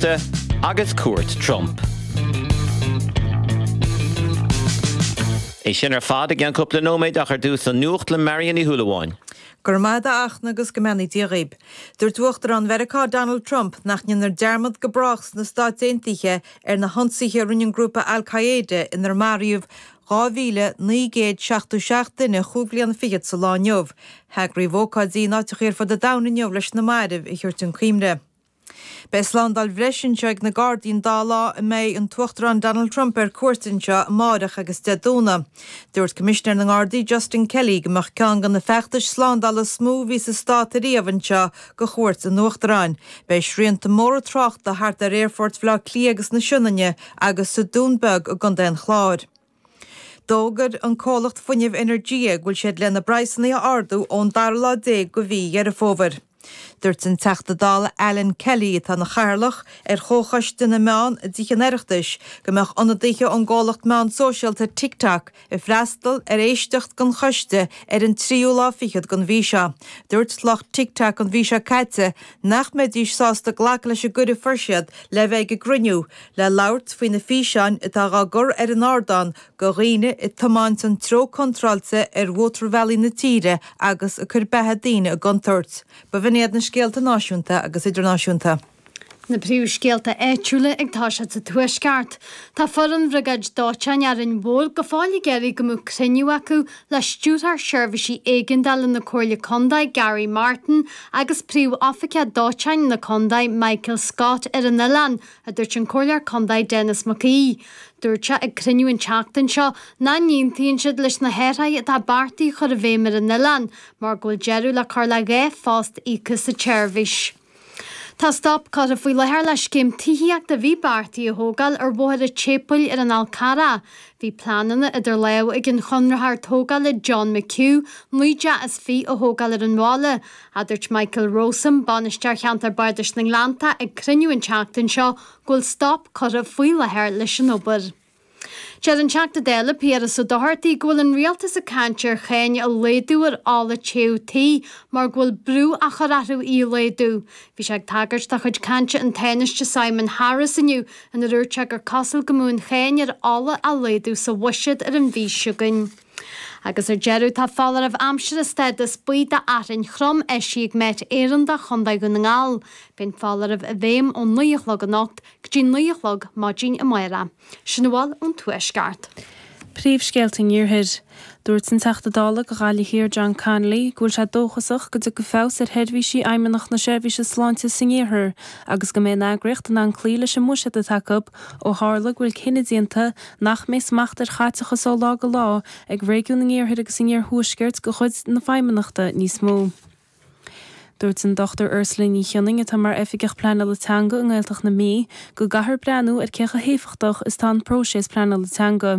Márta agus cuairt Trump. É sin ar fad i gceann cúpla nóiméad ach ar dtús an Nuacht le Marion Ní Shúilleabháin. Go raibh maith agat a Fhachtna agus go mbeannaí Dia dhaoib. Dúirt Uachtarán Mheiriceá Donald Trump nach ndéanfar dearmad go brách sna Stáit Aontaithe ar na hionsaithe a rinne an grúpa Al Qaeda inar maraíodh 2,977 duine chúig bhliana fichead sa lá inniu. Heagraíodh ócáidí in áiteachaí ar fud an domhain inniu leis na mairbh a thabhairt chun cuimhne. Beidh slándáil bhreise anseo ag na Gardaí an dá lá a mbeidh an tUachtarán Donald Trump ar cuairt anseo, amárach agus Dé Domhnaigh. Dúirt Coimisinéir na nGardaí Justin Kelly go mbeadh ceann de na feachtais slándála is mó a bhí sa Stát ariamh anseo do chuairt an Uachtaráin. Beidh srianta móra tráchta thart ar Aerfoirt Bhaile Átha Cliath agus na Sionainne agus sa Dún Beag i gcontae an Chláir. D'fhógair an comhlacht fuinnimh Energia go bhfuil siad lena bpraghsanna a ardú ón dara lá déag de mhí Dheireadh Fómhair. Dúirt an Teachta Dála Alan Kelly, atá ina chathaoirleach ar Chomhchoiste na Meán i dTithe an Oireachtais, go mbeadh ionadaithe ón gcomhlacht meán sóisialta TikTok ag freastal ar éisteacht den choiste ar an tríú lá fichead den mhí seo. Dúirt lucht TikTok an mhí seo caite nach mbeidís sásta glacadh leis an gcuireadh a fuair siad le bheith ag an gcruinniú, le labhairt faoi na físeáin atá á gcur ar an ardán de dhaoine ag tiomáint an treo contráilte ar mhótarbhealaí na tíre agus ag cur beatha daoine i gcontúirt. Ba shin iad na scéalta náisiúnta agus idirnáisiúnta. Na príomhscéalta áitiúla ag toiseacht sa Tuaisceart. Tá foireann bhriogáid dóiteáin Árainn Mhór go fóill ag iarraidh go mbeadh cruinniú acu le Stiúrthóir Seirbhísí Éigeandála na Comhairle Contae, Garry Martin, agus Príomhoifigeach Dóiteáin na Contae, Michael Scott, ar an oileán. a dúirt an Comhairleoir Contae Denis Mac Aoidh. Dúirt sé ag cruinniú an tseachtain seo nach n-aontaíonn siad leis na hathruithe atá beartaithe a chur i bhfeidhm ar an oileán mar go bhfuil deireadh le cur le dhá phost íoctha sa tseirbhís. Tá stop curtha faoi láthair le scéim tithíochta a bhí beartaithe a thógáil ar Bhóthar a' tSéipéil ar an Fhál Carrach. Bhí pleananna idir lámha ag an chonraitheoir tógála John McHugh 9 dteach is fiche a thógáil ar an bhaile, ach dúirt Michael Rowsome, Bainisteoir Cheantar Bardais na nGleannta ag cruinniú an tseachtain seo go bhfuil stop curtha faoi láthair leis an obair. Deir an Teachta Dála Piaras Ó Dochartaigh go bhfuil an Rialtas ag caint ar cháin a laghdú ar ola téamh tí mar go bhfuil brú á chur orthu í a laghdú. Bhí sé ag tagairt do chuid cainte an Tánaiste Simon Harris inniu inar úirt sé gur cosúil go mbeadh an cháin ar ola á laghdú sa bhuiséad ar an mhí seo chugainn. Agus ar deireadh, tá foláireamh aimsire stádas buí d'fhearthainn throm eisithe ag Met Éireann do Chontae Dhún na nGall. Beidh an foláireamh i bhfeidhm ón naoi a chlog anocht go dtí naoi a chlog maidin amáireach. Sin a bhfuil ón Tuaisceart. Príomhscéalta an Iarthair. Dúirt an Teachta Dála do Ghaillimh Thiar John Connolly go bhfuil sé dóchasach go dtiocfaidh feabhas ar sheirbhísí Fheidhmeannacht na Seirbhíse Sláinte san Iarthar agus go mbeidh an eagraíocht in ann cloí leis an mbuiséad atá acu ó tharla go bhfuil cinneadh déanta nach mbeidh smacht ar chaiteachas ó lá go lá ag réigiún an iarthair agus an iarthuaiscirt de chuid na Feidhmeannachta níos mó. Dúirt an Dr Ursula Ní Chionnainn, atá mar Oifigeach Pleanála Teanga i nGaeltacht na Mí, go gcaithfear breathnú ar cé chomh héifeachtach is atá an próiseas pleanála teanga.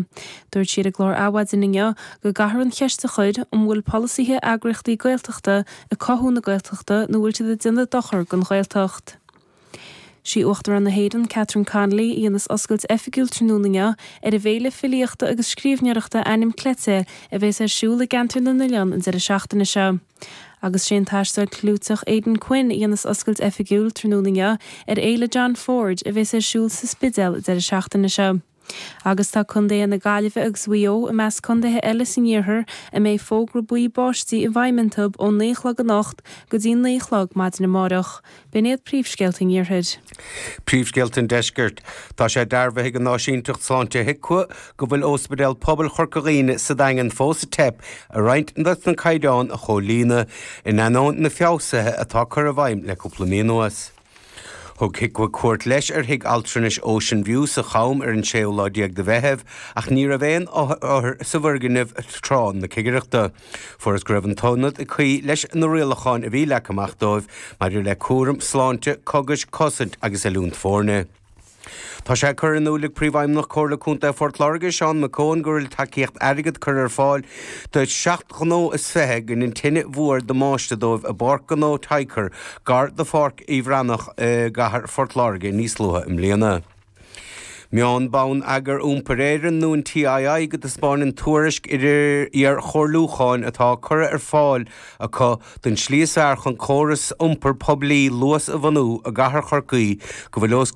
Dúirt sí ar an gclár Adhmhaidin inniu go gcaithfear an cheist a chur an bhfuil polasaithe eagraíochtaí Gaeltachta ag cothú na Gaeltachta nó bhfuil siad ag déanamh dochair don Ghaeltacht. Sí Uachtarán na hÉireann, Catherine Connolly, a dhéanas oscailt oifigiúil tráthnóna inniu ar an bhféile filíochta agus scríbhneoireachta Anam Cleite a bhéas ar siúl i gCeantar na nOileán an deireadh seachtaine seo. Agus sé an t-aisteoir clúiteach Aidan Quinn a dhéanas oscailt oifigiúil tráthnóna inniu ar Fhéile John Ford a bhéas ar siúl sa Spidéal an deireadh seachtaine seo. Agus tá contaetha na Gaillimhe agus Mhaigh Eo i measc contaetha eile san iarthar a mbeidh fógra buí báistí i bhfeidhm intu ón naoi a chlog anocht go dtí naoi a chlog maidin amárach. B'in iad príomhscéalta an iarthair. Príomhscéalta an deiscirt. Tá sé dearbhaithe ag an Áisínteacht Sláinte HIQA go bhfuil Ospidéal Pobail Chorca Dhuibhne sa Daingean fós ag teip ar roinnt des na caighdeáin a chomhlíonadh, in ainneoin na feabhsuithe atá curtha i bhfeidhm le cúpla mí anuas. Thug HIQA cuairt leis ar thigh altranais Ocean View sa Cham ar an séú lá déag de Mheitheamh ach ní raibh aon othar sa bhfoirgneamh tráth na cigireachta. Fuarthas go raibh an t-ionad ag cloí leis na rialacháin a bhí leagtha amach dóibh maidir le cúram sláinte, cogais, cosaint agus oiliúint foirne. Tá sé curtha in iúl ag Príomhfheidhmeannach Chomhairle Contae Phort Láirge, Sean McKeown, go bhfuil tacaíocht airgid curtha ar fáil do sheacht gnó is fiche a dhein an tine mhór damáiste dóibh i bPáirc Ghnó Tycor, gar do Pháirc an Bhreathnaigh i gcathair Phort Láirge níos luaithe i mbliana. Maíonn Bonneagar Iompair Éireann nó an TII go dtaispeáineann tuairisc iarchomhairliúcháin atá curtha ar fáil acu don tslí is fearr chun córas iompar poiblí Luas a bhunú i gCathair Chorcaí go bhfuil os